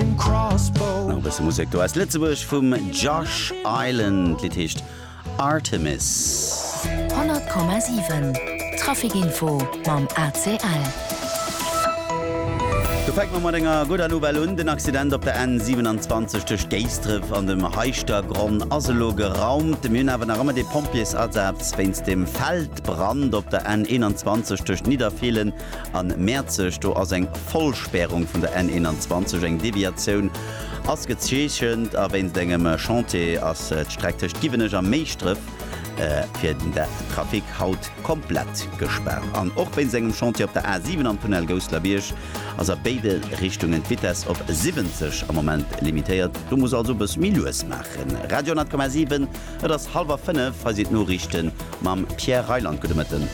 Nach e bësse Musek do aus Lëtzebuerg vum Josh Island. D'Lidd heescht Artemis. 100,7 Trafikinfo mam ACL. Do fänke mer mat enger gudder Nouvelle un. Den Accident op der N 27 tëscht Géisdref an dem Heischtergronn ass elo geraumt. Mir hunn awer nach ëmmer dee Pompjeesasaz wéinst dem Feldbrand op der N 21 tëscht Nidderfeelen an Mäerzeg, do ass eng Vollspärung vun der N21, eng Deviatioun ass gezeechent a wéinst engem Chantier ass d'Streck tëscht Giwenech a Méischdref fir den Trafic haut komplett gespaart. An och wéinst engem Chantier op der A7 am Tunnel Gousselerbierg ass a béide Richtungen d'Vitess op 70 am Moment limitéiert. Do muss also e bësse méi lues maachen. Radio 10,7. Et ass hallwer 5, hei sinn d'Noriichten mam Pierre Reyland. Gudde Mëtten.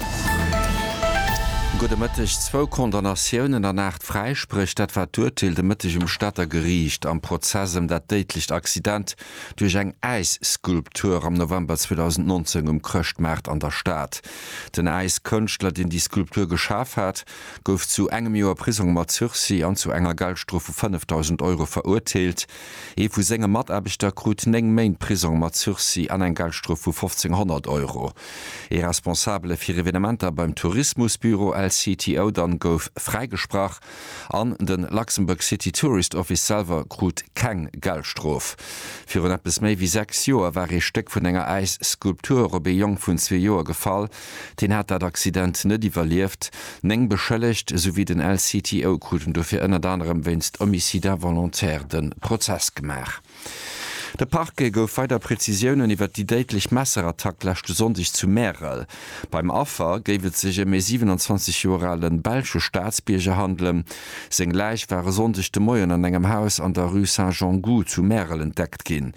Gudde Mëtteg. Zwou Condamnatiounen an aacht Fräispréch, dat war d'Urteel de Mëtteg um Stater Geriicht am Prozess ëm dat déidlecht Accident duerch eng Äisskulptur am November 2019 um Chrëschtmaart an der Stad. Den Äiskënschtler, deen déi Skulptur geschaf hat, gouf zu engem Joer Prisong mat Sursis an zu enger Geldstrof vu 5.000 Euro verurteelt. Ee vu senge Mataarbechter krut 9 Méint Prisong mat Sursis an eng Geldstrof vu 1.500 Euro. Ee Responsabele fir Evenementer beim Tourismusbüro LCTO dann gouf fräigesprach an de Luxembourg City Tourist Office selwer krut keng Geldstrof. Virun eppes méi wéi 6 Joer war ee Stéck vun enger Äisskulptur op ee Jong vun zwee Joer gefall, Hien hat dat Accident net iwwerlieft. Néng Beschëllegt esouwéi den LCTO kruten dofir ënnert anerem wéinst Homicide involontaire de Prozess gemaach. De Parquet gouf weider Prezisiounen iwwer déi déidlech Messerattack leschte Sonndeg zu Märel. Beim Affer géif et sech ëm ee 27 Joer ale belsche Staatsbierger handelen, Seng Läich war e Sonndeg de Moien an engem Haus an der Rue Saint-Jean-Gou zu Märel entdeckt ginn.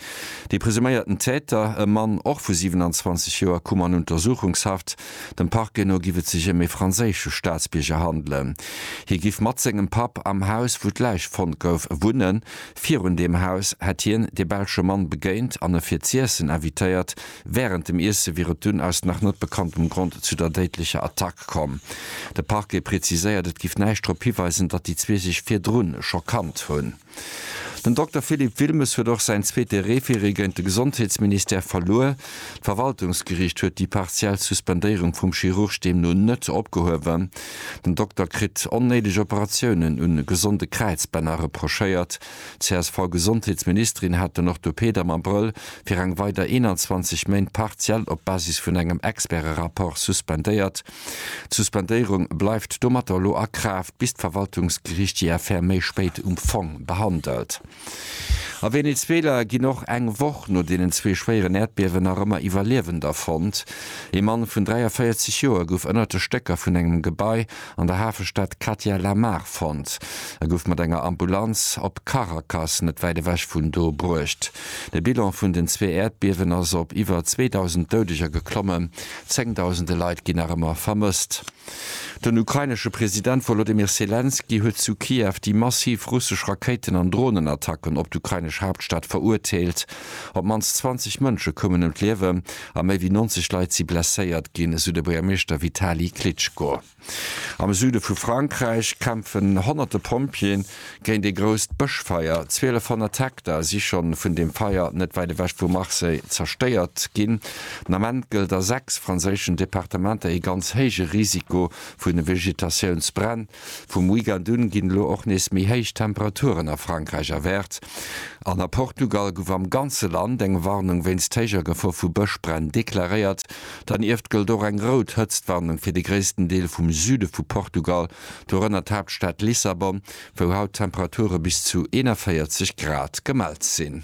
Dee presuméierten Täter, e Mann, och vu 27 Joer, koum an Untersuchungshaft. Dem Parquet no giff et sech ëm ee franséische Staatsbierger handelen. Hie giff mat sengem Papp am Haus, wou d'Läich fonnt gouf, wunnen. Virun deem Haus hätt hien dee belsche Mann begéint an e fir z'iessen invitéiert. Wärend dem Iesse wier et dunn aus nach net bekanntem Grond zu der déidlecher Attack komm. De Parquet preziséiert, et géif näischt drop hiweisen, datt déi zwee sech virdru scho kannt hunn. Den Dokter Philippe Wilmes huet och säin zweete Referé géint de Gesondheetsministère verluer. D'Verwaltungsgeriicht huet déi partiell Suspendéierung vum Chirurg deemno net opgehuewen. Den Dokter kritt onnéideg Operatiounen u gesonde Kräizbänner reprochéiert. D'CSV-Gesondheetsministerin hat den Orthopäd am Abrëll fir eng weider 21 Méint partiell op Basis vun engem Experte-Rapport suspendéiert. D'Suspendéierung bleift domatter elo a Kraaft, bis d'Verwaltungsgeriicht déi Affär méi spéit um Fong behandelt. A Venezuela ginn och eng Woch no deenen zwee schwéieren Äerdbiewen nach ëmmer Iwwerliewender fonnt. Ee Mann vun 43 Joer gouf ënnert de Stécker vun engem Gebai an der Hafestad Katia Lamar fonnt. E gouf mat enger Ambulanz op Caracas, net wäit ewech vun do, bruecht. De Bilan vun den zwee Äerdbiewen ass op iwwer 2.000 Doudeger geklommen, zéngdausende Leit ginn nach ëmmer vermësst. Den ukrainesche President Wolodymyr Selenskyj huet zu Kiew déi massiv russesch Rakéiten an Dronenattacken op d'ukrainesch Haaptstad verurteelt. Op d'mannst 20 Mënsche koumen ëm d'Liewen, a méi wéi 90 Leit si blesséiert ginn, esou de Buergermeeschter Vitali Klitschko. Am Süde vu Frankräich kämpfen honnerte Pompjeeën géint ee grousst Bëschfeier. 1.200 Hektar si schonn vun deem Feier net wäit ewech vu Marseille zerstéiert ginn. Den Ament gëllt a sechs franséischen Departementer ee ganz héije Risiko vu Vegetatiounsbränn. Vum Weekend un ginn elo och nees méi héich Temperaturen a Frankräich erwaart an a Portugal gouf am ganze Land eng Warnung wéinst héijer Gefor vu Bëschbränn deklaréiert. Dernieft gëllt och eng rout Hëtztwarnung fir de gréissten Deel vum Süde vu Portugal, dorënner d'Haaptstad Lissabon, wou haut Temperature bis zu 41 Grad gemellt sinn.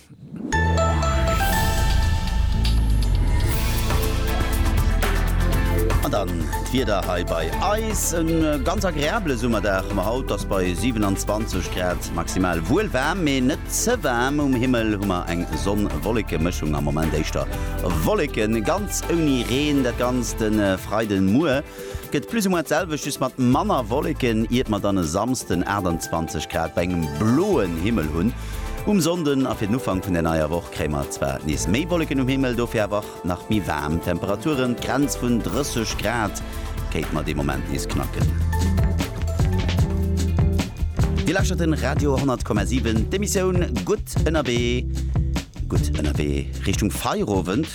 An dann d'Wieder hei bei eis, E ganz agreabele Summerdag hu mer haut, ass bei 27 Grad maximal wuel waarm, mee net ze waarm. Um Himmel hu mer eng Sonn-Wolleke-Mëschung, am Moment éischter Wolleken, ganz ouni Reen. Dat Ganzt e Freiden muer. Gëtt plus ou moins d'selwecht, just mat manner Wolleken, iert mer dann e Samsden 28 Grad bei engem bloen Himmel hunn. Um Sonnden a fir den Ufank vun der neier Woch kréie mer zwar nees méi Wolleken um Himmel, dofir awer nach méi waarm Temperaturen. D'Grenz vun 30 Grad kéinte mer dee Moment nees knacken. Dir lauschtert den Radio 10,7, d'Emissioun Gutt ënnerwee. Gutt ënnerwee Richtung Feierowend.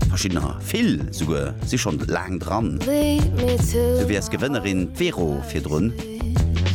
Verschiddener, vill souguer, si schonn laang dran. Du wiers Gewënnerin, d'Vero virdrun.